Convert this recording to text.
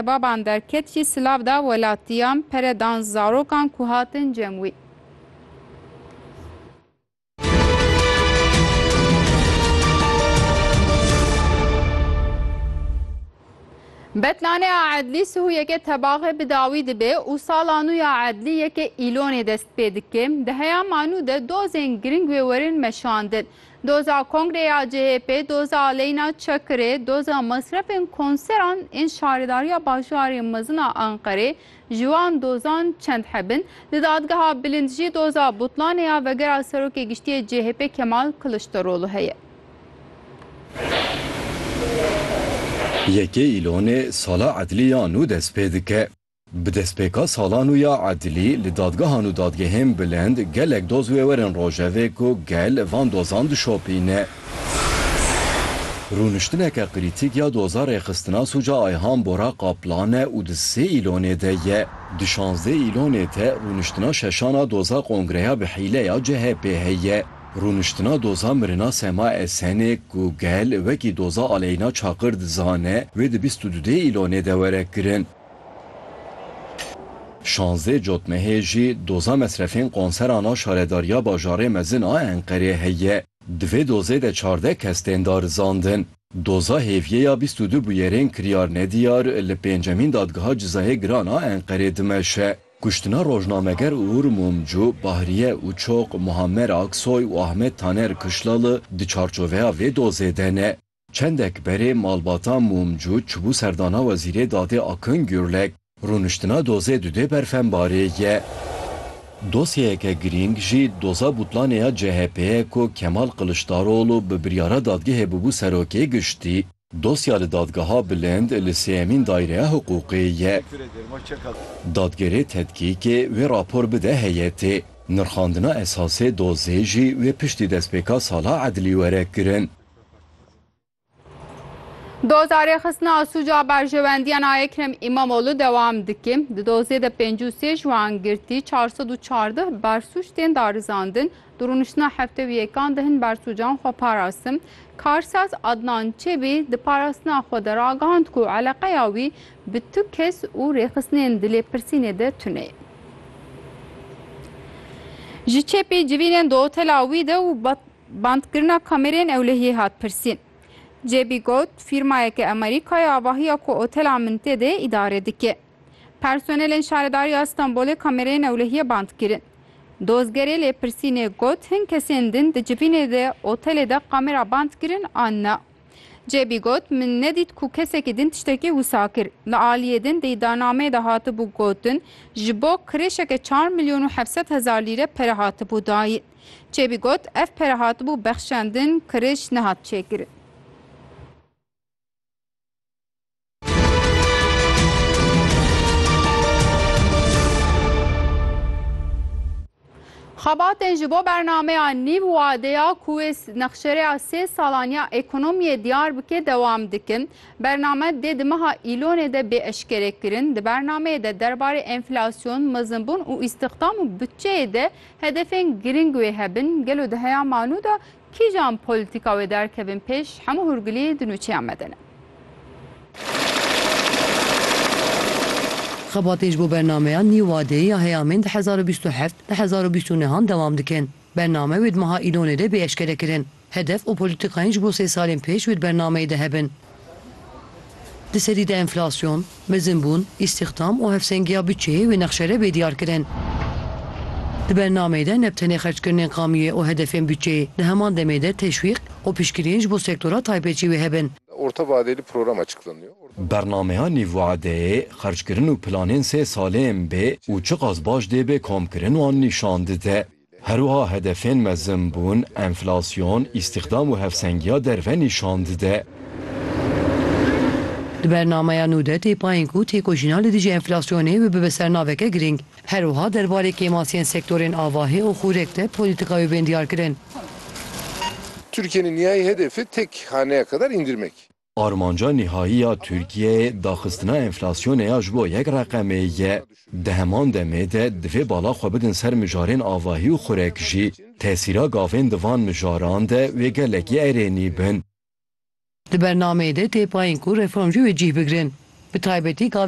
Baban derket jî silav da welatiyan, pere dan zarokan ku hatin cem wî. Betlanê a Edlî sihuyeke tebaxe bi dawî dibe û sala nû ya Edlî yeke îlonê dest pê dike. Di heya ma nû de dozên giring wê werin meşandin. Doza kongreya CHP'ê, doza aleyna Çakirê, doza mesrefên konseran ên şaredariya bajarê mezin a Anqerê ji wan dozan çend heb in. Di dadgeha bilind jî doza butlanê ya vegera serokê giştiyê CHP'ê Kemal Kiliçdaroglu heye. Yekê Îlonê sala edlî ya nû dest pê dike. Bi destpêka sala nû ya edilî li dadgehan û dadgehên bilind gelek doz wê werin rojevê ku gel van dozan dişopîne. Rûniştineke krîtîk ya doza rêxistina sûca Ayhan Bora Kaplan e û di sê îlonê de ye. Di şazdeh îlonê de rûniştina şeşan a doza kongreya bi hîle ya CHP'ê heye. Rûniştina doza mirina Sema Esenê ku gel wekî doza Aleyna Çakır dizane wê di bîst û du dê îlonê de were kirin. Şazdeh cotmehê jî doza mesrefên konseran a Şaredariya Bajarê Mezin a Enqerê heye. Di vê dozê de çardeh kes tên darizandin. Doza hêviyê ya bîst û du bûyerên kiryarnediyar li pêncemîn Dadgeha Cizayê Giran a Enqerê dimeşe. Kuştina rojnameger Uğur Mumcu, Bahriye Uçok, Muammer Aksoy û Ahmet Taner Kışlalı di çarçoveya vê dozê de ne. Çendek berê malbata Mumcu çûbû serdana Wezîrê Dadê Akın Gürlek, rûniştina dozê dudê berfembarê ye. Dosyeyeke girîng jî doza butlanê ya CHP'ê ye ku Kemal Kılıçdaroğlu bi biryara dadgehê bûbû Serokê Giştî. Dosya li Dadgeha Bilind li Sêyemîn Dayreya Hiqûqê ye. Dadgerê tedkîkê wê rapor bide heyetê. Nirxandina esasê dozê jî wê piştî destpêka sala edlî were kirin. Doza rêxistina sûca berjewendiyan a Ekrem Îmamoğlu dewam dike. Di dozê de pêncî û sê ji wan girtî çar sed û çardeh bersûc tên darizandin. Di rûniştina hefte û yekan de hin bersûcan xwe parastin. Karsaz Adnan Çebî di parastina xwe de ragihand ku eleqeya wî bi tu kes û rêxistinên di lêpirsînê de tune ye. Ji çepî civînên di otela wî de û Bandkirina kamereyên ewlehiyê hat pirsîn. Cebî got, Fîrmayeke Amerîka ye avahiya ku otela min tê de îdare dike. Personelên Şaredariya Stenbolê kamereyên ewlehiyê band kirin. Dozgerê lêpirsînê got, Hin kesên din di civînê de otelê de kamera band kirin an na? Cebî got, Min nedît ku kesekî din tiştekî wisa kir. Li aliyê din di îdianameyê de hatibû gotin, ji bo kirêşeke çar milyon û hevsed hezar lîre pere hatibû dayîn. Çêbî got, Ev pere hatibû bexşandin, kirij nehat çêkirin. Xebatên ji bo bernameya nîv wadeya ku wê nexşereya sê salan ya ekonomiyê diyar bike dewam dikin. Bername dê di meha Îlonê de bê eşkerekirin. Di bernameyê de derbarê enflasyon, mezinbûn û îstixdam û bütçeyê de Hedefên girîng wê hebin, gelo di heya manu de kîjan polîtîka wê derkevin pêş, hemû hûrgilî di nûçeyan me de ne. Xebatên ji bo bernameya nî wadeyê ya heyamên di hezar û bîst û heft, di hezar û bîst û neh an dewam dikin. Bername wê di meha Îlonê de bê eşkerekirin. Hedef û polîtîkayên ji bo sê salên pêş wê di bernameyê de hebin. Di serî de enflasyon, mezinbûn, îstîxdam û hevsengiya butçeyê wê nexşere bê diyarkirin. Di bernameyê de ne bi tenê xerckirinên qamiyê û hedefên butçeyê, di heman demê de teşwîq û piştgiriyên ji bo sektora taybet jî wê hebin. Bernameya nîvwadeyê, xerckirin û planên sê salên bê û çiqas baş dê bê komkirin wan nîşan dide. Herwiha hedefên mezin bûn, enflasyon, îstîxdam û hevsengiya derve nîşan dide. Di bernameya nû de tê payîn ku têkoşîna li dijî enflasyonê bibe bi sernaveke girîng. Herwiha derbarê kêmasiyên sektorên avahî û xûrek de polîtîka wê bên diyarkirin. Tirkiyeyê niyayê hedefê tek haneya kadar îndirmek. Armanca nihayî ya Tirkiyeyê daxistina enflasyonê ya ji bo yek reqemê ye. Di heman demê de divê bala xwe bidin ser mijarên avahî û xurek jî. Tesîra gavên di van mijaran de wê gelekî erênî bin. Di bernameyê de tê payîn ku reformcî wê cîh bigirin. Bi taybetî gavên